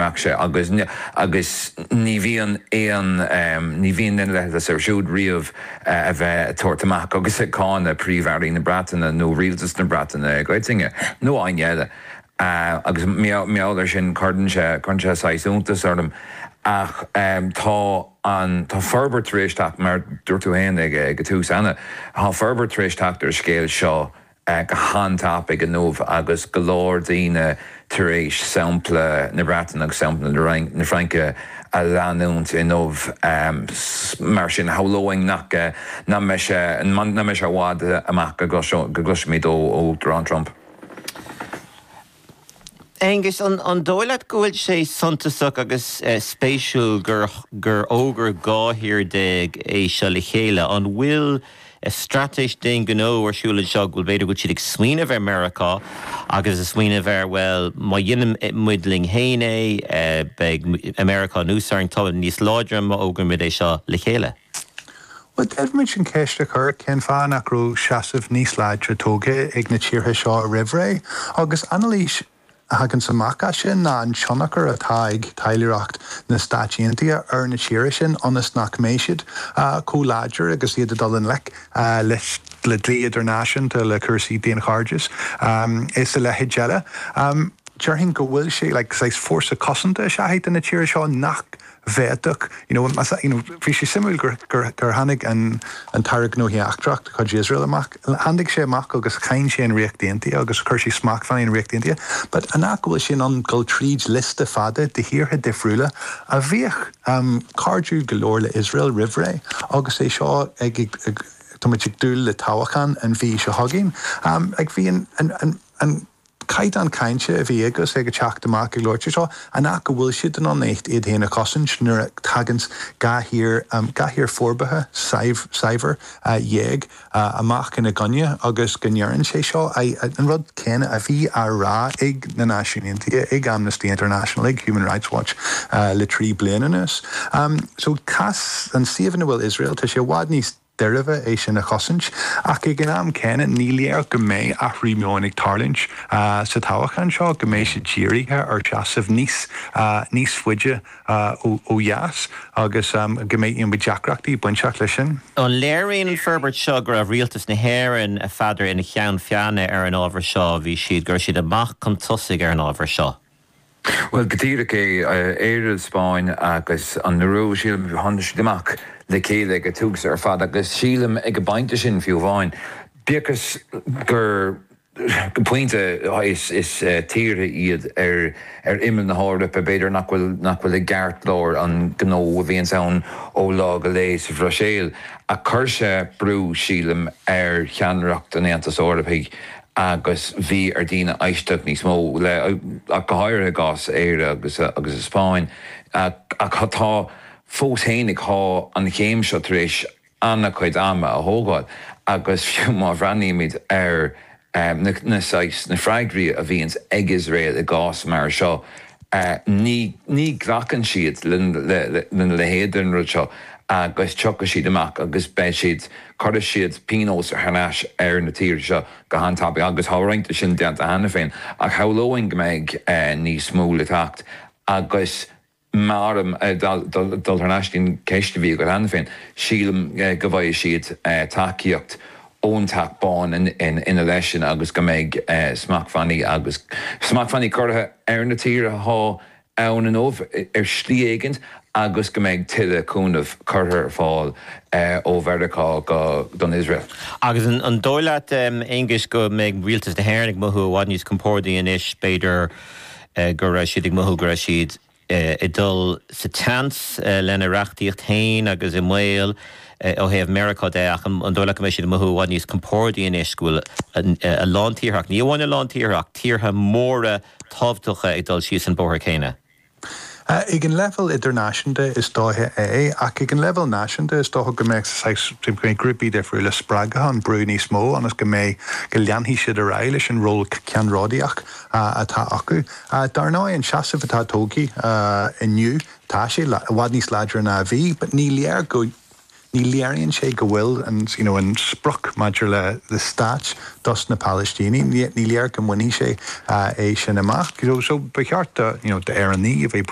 Bheadh sé, agus agus ní bhíonn aon ní bhíonn leithe air siúd riamh a bheith ag tabhairt amach agus ag cáineadh Príomh-Airí na Breataine nó rialtas na Breataine i gcoitinne, nó éinne eile. Agus mar gheall air sin, cuireann sé cuireann sé saghas iontas orm, ach tá an tá forbairt tar éis teacht, mar dúirt tú féin ag ag an tús ansan, tá forbairt tar éis teacht ar an scéal seo go han-tapaidh inniu agus go leor daoine tar éis sampla na Breataine agus sampla na Fraince a leanúint inniu. Mar sin, shamhlóinn nach nach mbeidh sé i bhfad amach go gcloisfimid ó Uachtarán Trump. Aengus, An dóigh leat go bhfuil sé suntasach agus spéisiúil gur fhógair 12 thír é seo le chéile? An bhfuil straitéis d'aon ghnó ar siúl anseo, go bhfuil b'fhéidir go bhfuil siad ag smaoineamh ar Mheiriceá agus ag smaoineamh ar, bhuel, má dhéanann muid linn fhéin é, beidh Meiriceá inár n-aghaidh, táimid níos láidre má fhógraímid é seo le chéile? Bhuel, d'fhéadfadh muid an cheist a chur, cén fáth nach raibh seasamh níos láidre tógtha ag na tíortha seo roimh ré? Agus anailís a thaganns amach as sin ná an tionchar atá ag taidhleoireacht na Stáit Aontaithe ar na tíortha sin ionas nach mbeidh siad chomh láidir agus iad ag dul i ngleic le dlí idirnáisiúnta, le cúrsaí daonchairdis is a leithéid eile. Déarfainn go bhfuil sé, like, saghas fórsa cosanta é do na tíortha seo nach bhféadfadh you know más you know bhí sé suimiúil gur gur gur tháinig an an tAire Gnóthaí Eachtrach de chuid Iosrael amach tháinig sé amach agus cháin sé an Ríocht Aontaithe agus chuir sé smachtbhannaí ar an Ríocht Aontaithe but an fhact go bhfuil sé in ann dul tríd liosta fada de thíortha difriúla a bhíodh cairdiúil go leor le Iosrael roimh ré agus é seo ag ag táimid ag dúil le toghchán an mhí seo chugainn ag bhí an an an Caighdeán cainte a bhí aige is é ag teacht amach ag labhairt seo, an fhact go bhfuil siad in ann iad féin a chosaint nuair a thaganns dhá thír, dhá thír forbartha shaibhir, dhéag amach ina gcoinne agus go ndeireann sé seo an rud céanna a bhí á rá ag na Náisiúin Aontaithe, ag Amnesty International, ag Human Rights Watch le trí bliana anuas. So cás, an suíomh ina bhfuil Iosrael, tá sé i bhfad níos. deacra é sin a chosaint, ach ag an am céanna ní léir go mbeidh athrú meoin ag tarlúint sa toghachán seo, go mbeidh siad dírithe ar seasamh níos níos faide ó dheas agus go mbeidh go mbeidh deacrachtaí bainteach leis sin. An léiríonn an fhorbairt seo go raibh rialtas na hÉireann, n'fheadar ina cheann feadhna ar an ábhar seo a bhí siad, go raibh siad amach chun tosaigh ar an ábhar seo. Bhuel, go díreach é. Éire, an Spáinn agus an Iorua. Sílim gur tháinig siad amach le chéile ag an tús ar fad, agus sílim ag an bpointe sin fiú amháin, bíodh is gur go pointe, is tíortha iad ar imeall na hEorpa, b'fhéidir nach bhfuil nach bhfuil i gceartlár an ghnó a bhíonns ann ó lá go lae sa Bhruiséil, ach chuir sé brú, sílim, ar cheannaireacht an Aontais Eorpaigh agus bhí ar dhaoine éisteacht níos mó leo, ach go háirithe i gcás Éire agus agus an Spáinn, ach tá, fós féin, tá an chéim seo tar éis an-chuid ama a thógáil agus fiú má bhreathnaímid ar na na saghas na freagraí a bhíonns ag Iosrael i gcás mar seo, ní ní ghlacann siad le le le leithéid de rud seo agus tiocfaidh siad amach agus beidh siad. Cuirfidh siad pionós thar n-ais ar na tíortha seo go han-tapaidh, agus tá roinnt de sin déanta cheana féin, ach shamhlóinn go mbeidh níos mó le theacht. Agus má tá orm dul thar n-ais chuig an cheist a bhí agat cheana féin, sílim go bhfaighidh siad tacaíocht ón Teach Bán ina leith sin agus go mbeidh smachtbhannaí agus smachtbhannaí curtha ar na tíortha ann inniu ar shlí éigint agus go mbeidh tuilleadh cúnaimh curtha ar fáil ó Mheiriceá do Iosrael. Agus an dóigh leat, Aengus, go mbeidh rialtas na hÉireann ag mothú i bhfad níos compórdaí anois, b'fhéidir, go raibh siad ag mothú go raibh siad ag dul sa tseans lena reachtaíocht féin agus i mbaol, ó thaobh Mheiriceá de, ach an dóigh leat go mbeidh siad ag mothú i bhfad níos compórdaí anois go bhfuil a lán tíortha, ach ní amháin a lán tíortha, ach tíortha móra tábhachtacha ag dul síos an bóthar céanna? Ag an leibhéal idirnáisiúnta is dócha é, ach ag an leibhéal náisiúnta is dócha go mbeidh saghas, go mbeidh grúpaí difriúla spreagtha chun brú níos mó ionas go mbeidh, go leanfaidh siad ar aghaidh leis an ról ceannródaíoch atá acu. Dar ndóigh, an seasamh atá tógtha inniu, Tá sé i bhfad níos láidre ná a bhí but ní léir go ní léiríonn sé go bhfuil an you know an sprioc maidir le le stát dos na Palaistínigh ní léir go mbainfidh sé é sin amach you know so ba cheart do you know do Éireannaigh a bheith